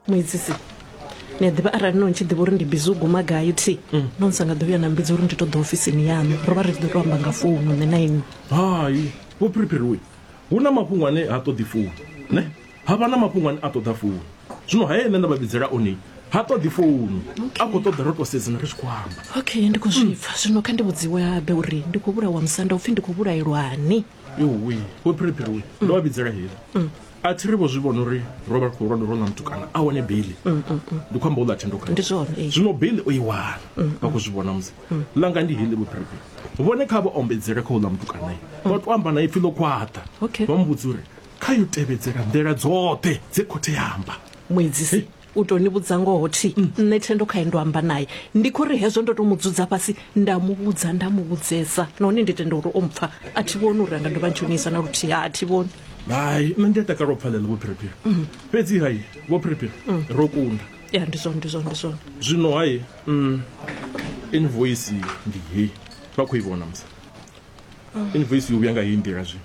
muedzisi ni a ḓivha arali no ni tshi ḓivha uri ndi bizi u guma gai thi mm. no ni sa nga ḓo vhuya na mbidza uri ndi ṱoḓa ofisini yaṋu ro vha ri tshi ḓo to amba nga founu nṋe na inwi hai vho phiriphiriwe hu na mafhungo ane ha ṱoḓi founu ne ha vha na mafhungo ane a ṱoḓa founu zwino haye nṋe nda vha vhidzela one ha ṱoḓi founu a khou ṱoḓa ro to sedzana ri tshi khou amba okay ndi khou zwi pfa zwino kha ndi vhudziwe habe uri ndi khou vhulawa musanda upfhi ndi khou vhulaelwani yowe vho phiriphiriwe ndo vha vhidzela hela mm. a thi ri vho zwi vhona uri ro vha ri khou lwanda ro na mutukana a wane beli mm, mm, mm. ndi khou amba u ḽa thendo kha zwino beli o i wana vha khou zwi vhona musi langa ndi hili vhuphiriphiri vhone kha vha ombedzele kha u ḽa mutukanae vha to amba na ipfi ḽo khwaṱha vha mu vhudza uri kha yo tevhedzela nḓila dzoṱhe dze khothe ya amba muedzisi U tou ni vhudza ngoho thi nṋe Thendo khae ndo amba nae. Ndi khou ri hezwo ndo tou mu dzudza fhasi nda mu vhudza nda mu vhudzesa nahone ndi tenda uri o mpfa. A thi vhoni uri a nga dovha a ndzhenisa na luthihi, ha a thi vhoni. Hai, nṋe ndi a takala u pfa ḽeḽo Vho Phiriphiri. Fhedzi hai, Vho Phiriphiri, ro kunda. Ya, ndi zwone, ndi zwone, ndi zwone. Zwino hai, mm, invoisi ndi hei. Vha khou i vhona, musi? Invoisi yo vhuya nga heyi nḓila zwino.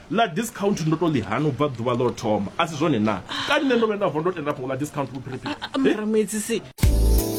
Ḽa discount ndo tou ḽi hana u bva ḓuvha ḽo thoma, a si zwone naa? Kani nṋe ndo vhuya nda vuwa ndo tenda fhungo ḽa discount vhuphiriphiri? Mara muedzisi.